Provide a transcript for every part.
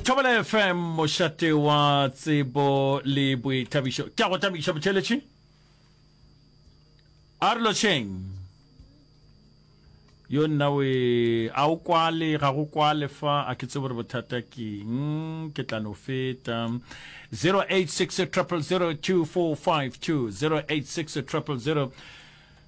thobela fm mošate wa tsebo le boithabišo ke a go thabiša botheletši a re lošeng yo nna we a o kwale ga go kwale fa a ke tsebo re bothata keng ke tla no feta 086 0002452 086 000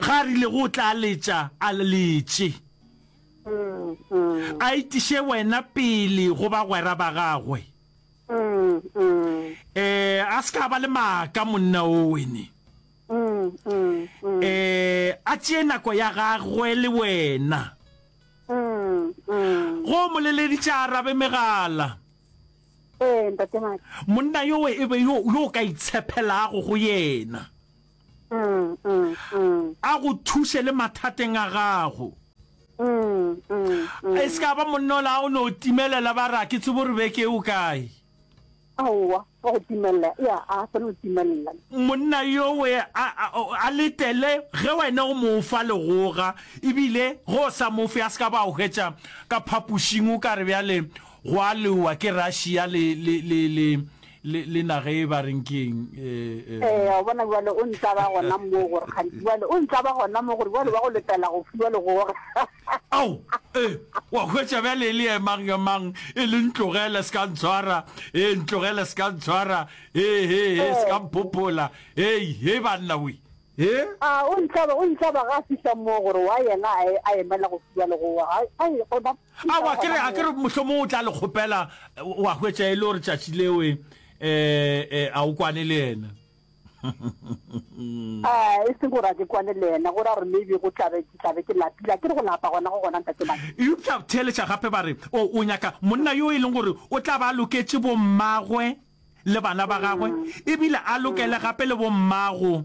Ge a rilego o tla letša, a le letše. A itiše wena pele go bagwera ba gagwe. Ee, a se ka a ba le maaka monna wo, wene. Ee, a tšee nako ya gagwe le wena. Ge o mo leleditše a arabe megala. Ee, Ntate Madi. Monna yowe e be yo, yo o ka itshephelago go yena. a go thuše le mathateng a gago. E se ka ba monna ola a go no timelela ba re a ke tsebe gore beke e o kae. Aowa, wa go timelela e a a seno timelela. Monna yowe a, a, a letele ge wena o mo fa legoga ebile ge o sa mo fe a se ka ba o hwetša ka phapošing o ka re bjale go a lewa ke Russia le, le, le, le le le na ge ba reng ke eng eh, eh, eh wa bona jwale o ntla ba gona mo gore kgantsi jwale o ntla ba gona mo gore jwale ba go letela go fiwa le gore ao eh wa hwetša bjale e le emang emang e le ntlogele se ka ntshwara e ntlogele se ka ntshwara e he he se ka mphopola ei he banna we e a o ntla ba o ntla ba ga fihla mo gore wa yena a emela go fiwa le go wa ai gona Aowa, ke re, a ke re mohlomong o tla le kgopela, wa hwetša e le gore tšatši leo e, e, e, a o kwane le yena. A, e se gore a ke kwane le yena, gore a re maybe go tla be, ke tla be ke lapile. A ke re go lapa gona go gona, Ntate Madi? Eupša theeletša gape ba re, o, o nyaka monna yo e leng gore o tla ba a loketše bommagwe le bana ba gagwe, e bile a lokele gape le bommago.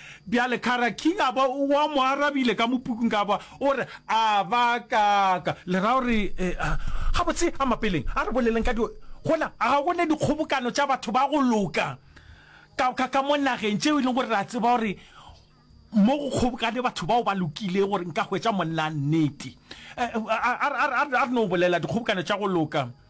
Bjale Kara King a ba wa mo arabile ka mopukung ka ba o re a ba kaka le ra o re a ga botse a mapeleng a re boleleng ka di gona a ga gone dikgobokano tša batho ba go loka ka ka ka mo nageng tšeo e leng gore ra tseba gore mo go kgobokane batho bao ba lokile gore nka hwetša monna nnete a re no bolela dikgobokano tša go loka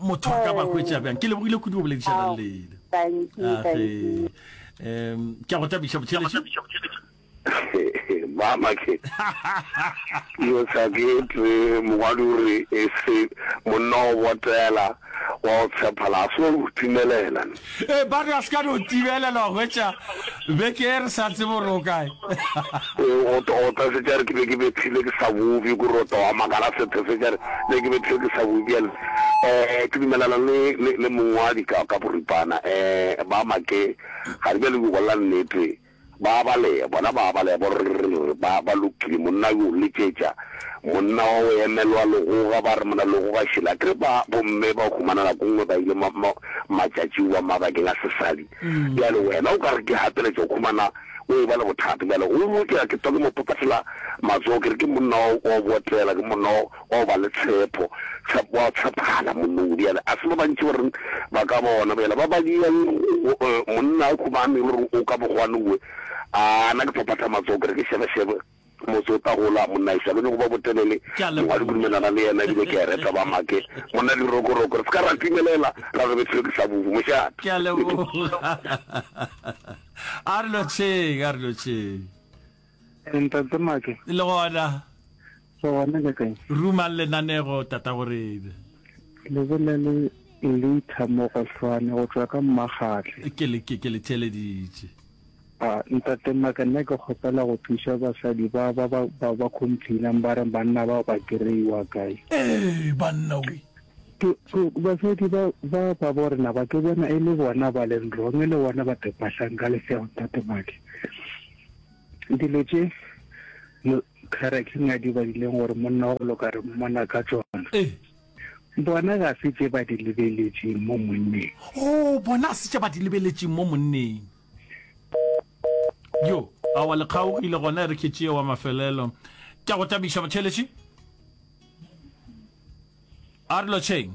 motho a ka ba hwetša bjang ke lebogile kudu go boledišanang le ene age um ke a go tabiša botšheletše mama ke yo sa ke tle mongwadi o re e se monna o botela wa o tshephala a se wa go timelela Ee, ba re a se ka no tibelelwa hwetša beke e re sa tsebe gore o kae. Gotogota se tša re ke be ke bethile ke sa bubje ku rotoga makala setho se tša re ne ke bethile ke sa bubje bjale um ke dumelana le le le mongwadi ka ka boripana um ba make ga re bjale ku bolela nnete Ba a balea, bona ba a balea, borrr, ba, ba lokile, monna yo, letšetša monna wa go emelwa, Legoga, ba re, Monna Legoga šele. A ke re ba, bomme ba humana nako nngwe ba ile ma, ma, matšatši wa mabakeng a sesadi. Bjale wena o ka re ke gapeletša, o humana o eba le bothata. Bjale o, ke, ke twa ke mo phaphathela matsogo, ke re, Ke monna wa, wa go botela, ke monna wa. Bao ba le tshepo, tshepo, wa tshephala monnong. Bjale, a se ba bantši ba reng ba ka bona. Bjale, ba ba diang monna a khumame, le reng o ka bogwanowe, a na ke phaphatha matsogo ke re ke šebešebe. Motse o tla gola, monna ešo a ke nyoko ba botelele. Mongwe a di kudumelana le yena, ebile ke a e reta ba make. Monna dirokoroko, re se ka ra timelela ra re bethilwe ke sabubu. Mošate. Ke a leboga. A re lotšheng, a re lotšheng. Ntate Make. Le gona. Re gona le kae? Ruma lenanego tata gorebe. Le bolele Lita mo go hlwane go tšwa ka Mmakgatle. Ke le ke le theleditše. A ntate Make nna ke kgopela go thuša basadi ba ba ba ba complainang ba re banna ba ba kreiwa kae. Ee banna we. Ke basadi ba ba ba bo rena ba ke bona e le bona ba leng wrong e le bona ba tepahlang ka lefšego ntate Make. Dilo tše Lukhara King a di badileng gore monna wa go loka re mmona ka tšona, bona ga se tše ba di lebeletšeng mo monneng. Oo, bona ga se tše ba di lebeletšeng mo monneng. Yo, aowa le kgaogile gona e re ke tšee wa mafelelo. Ke a go thabiša, Motšheletše. A re lotšheng.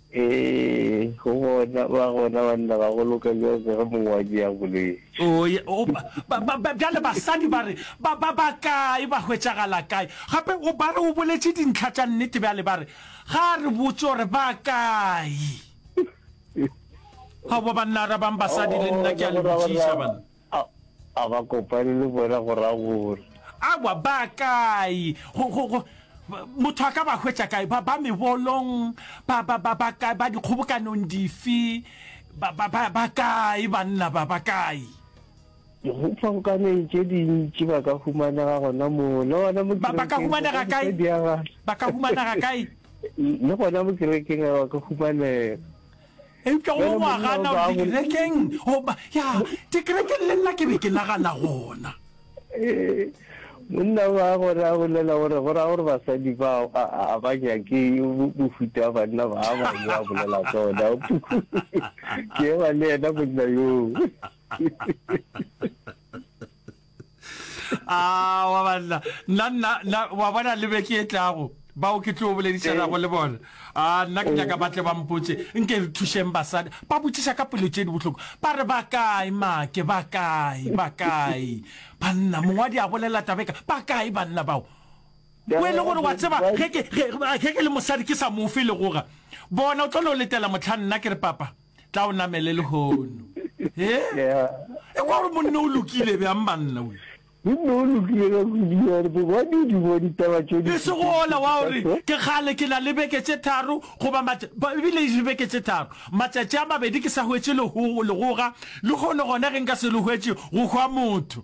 Ee, go bona, ba gona banna ga go loka bjang ka ge mongwe wa tšea bolwetši. Oo, ye, o, ba, ba, ba, ba, bjale basadi ba re, ba, ba, ba kae, ba hwetšagala kae? Gape o, ba re o boletše dintlha tša nnete bjale, ba re, ga a re botse gore ba kae. Ga go ba banna arabang basadi, le nna ke a le botšiša, banna. A, a ba kopane le bona go ra gore. Aowa, ba kae? Go, go, go, ba, motho a ka ba hwetša kae? Ba, ba mebolong? Ba, ba, ba, ba kae? Ba dikgobokanong dife? Ba, ba, ba, ba kae banna ba? Ba kae? Dikgobkaneng tše dintši ba ka humanega gona moo, le gona mo Ba, ba ka kerekeng, humanega kae? mosadi a ga- Ba ka humanega kae? le gona mo kerekeng a ba ka humanega. eupša o ile wa gana gore dikerekeng goba ya dikerekeng le nna ke be ke nagana gona monna ba gore a bolela gore go ra gore basadi ba a ba nyake mofuta wa banna ba a ba yo a bolela tsona ke eba le ena monna yoo a ah, wa banna nna nna wa bona le beke e tlago bao ke tlo boledišanago eh. le bona a ah, nna ke nyaka batle ba mpotse nke re thušeng basadi ba botšiša ka pelo tše di bohloko ba re ba kae make ba kae ba kae banna mongwadi a bolela tabeka ba kae banna bao o e le gore wa tseba ge ke le mosadi ke sa mofe le goga bona o tlo no letela motlha nna ke re papa tla o namele lehono e e kwa gore monne o lokile bjang banna o monne o lokile ka kudu gore bogadi di bo ditaba tše di e se go ola wa gore ke kgale ke na le beke tše tharo goba ebile e beke tše tharo matšatši a mabedi ke sa hwetše legoga le gone gona ge nka se le hwetše go hwa motho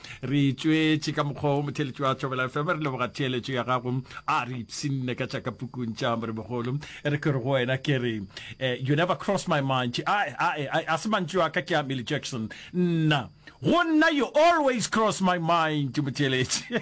re tšwetše ka mokgwa o motheletši wa tšobela fm re leboga theeletšo ya gago a re ipsinne ka tšaka pukung tša morebogolo e re ke re go wena ke re eh, you never cross my mind a se mantši wa ka ke a milly jackson nna go nna you always cross my mind motheeletši